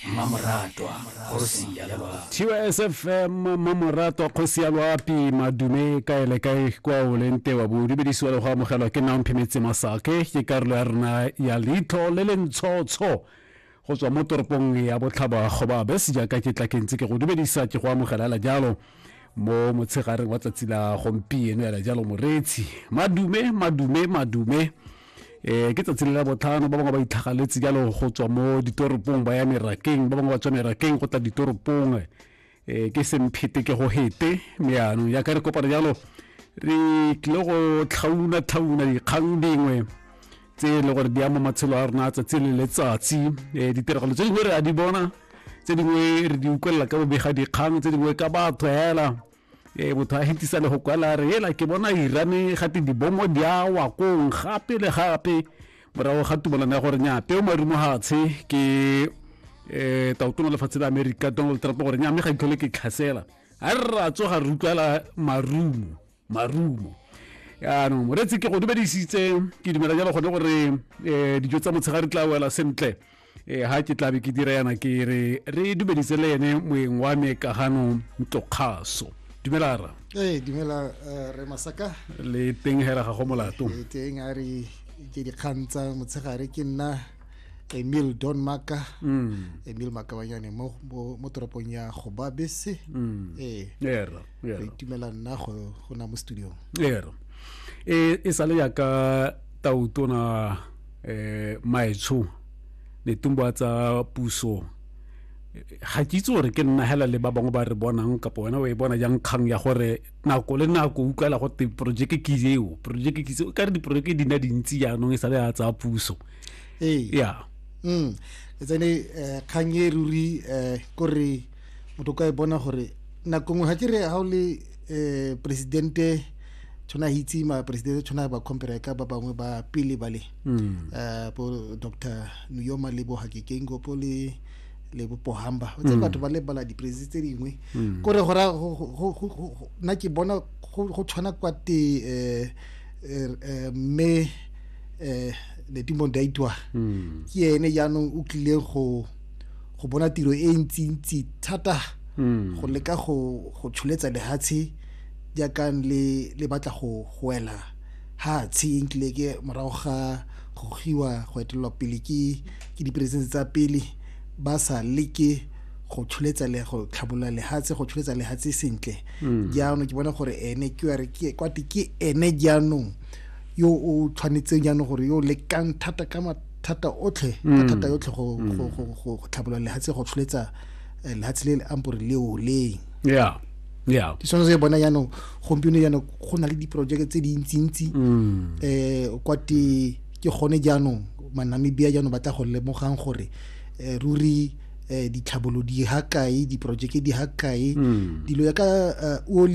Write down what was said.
mmamoratwa kgosi ya loapi TYSFM mmamoratwa kgosi ya loapi madume kae le kae kwa o leng te wa bo dumedisiwa le go amogelwa ke nang phemetse masake ke karolo ya rona ya leitlho le le ntshotsho go tswa mo toropong ya botlhaba goba bese jaaka ke tla ke ntse ke go dumedisa ke go amogela hela jalo mo motshegareng wa tsatsi la gompieno hela jalo moreetsi madume madume madume um ke tsatsi le la botlhano ba bangwe ba itlhagaletse jalo go tswa mo ditoropong ba ya merakeng ba bangwe ba tswa merakeng go tla ditoropong um ke semphete ke go hete mme yaanong jaaka re kopana jalo re tlile go tlhauna-tlhauna dikgang dingwe tse e le gore di ama matshelo a rona tsatsi le letsatsi um ditiragalo tse dingwe re a di bona tse dingwe re di utlwelela ka bobega dikgang tse dingwe ka batho hela e motho a hetisa le go kwala re ela ke bona irane gate dibomo di a wa kong gape le gape morago ga tumelano ya gore nya peo marumo gatshe ke um taotona lefatshe la america donald trump gore nya mme ga itlhole ke tlhasela a re ra tsoga re utlwala marumo marumo yaanong moreetsi ke go dumedisitse ke dumela jalo gone gore um dijo tsa motshegare tla wela sentle e ha ke tlabe ke dira yana ke re re dumedise le ene moeng wa me kagano ntlokgaso dumela ra ee dumela eh, re masaka le teng hela ga go molato e teng a re ke dikgang tsa motshegare ke nna emil don maka mm. emil makabanyane mo, mo, mo toropong ya gobabese mm. ee era re era itumela nna go go na mo studiong era e e sale ya ka tautona eh maetsho netumbo a tsa puso ga ke itse gore ke nna hela le ba bangwe ba re bonang kapo wena o e bona jang kgang ya gore nako le nako o utlwala gote projeke ke eo projeke ke eo ka re diprojeke di na dintsi jaanong e sale ya tsa puso ee ya mm. e tsene eh, kgang e ruri eh, kore motho ka e bona gore nako nngwe ga ke re ga o le um presidente tshwana a itse ma presidente tshwana ba compare ka ba bangwe ba pele ba le um bo doctor nuyoma le bo hakekengo po le le bopohamba tse batho ba lebala dipresi tse dingwe kore gora nna ke bona go tshwana kwa te um mme um ledimo daitwa ke ene jaanong o tlileng go go bona tiro e ntsintsi thata hmm. go leka go go tsholetsa lehatshe jaaka le le batla go go wela ha tshe nkile ke morago ga go giwa go etelelwa pele ke ke diperesente tsa pele ba sa leke go tsholetsa le go tlhabolola lehatshe go tsholetsa lehatshe sentle hmm. jaanong ke bona gore ene ke re ke kwate ke ene jaanong yo o tshwanetseng jaanong gore yo lekang thata ka thata otlhe ka mm. thata yotlhe go mm. tlhabolola lehatshe go tsholetsa eh, lehatshe le le ampore leo leng yeah yeah ke sone se bona jaanong gompieno jaanong go na le diporojeke tse dintsintsi um kwa te ke gone jaanong manamibia jaanong ba tla go lemogang gore eh, ruri um ditlhabolo di ha kae diporojeke di ha kae dilo ya ka oli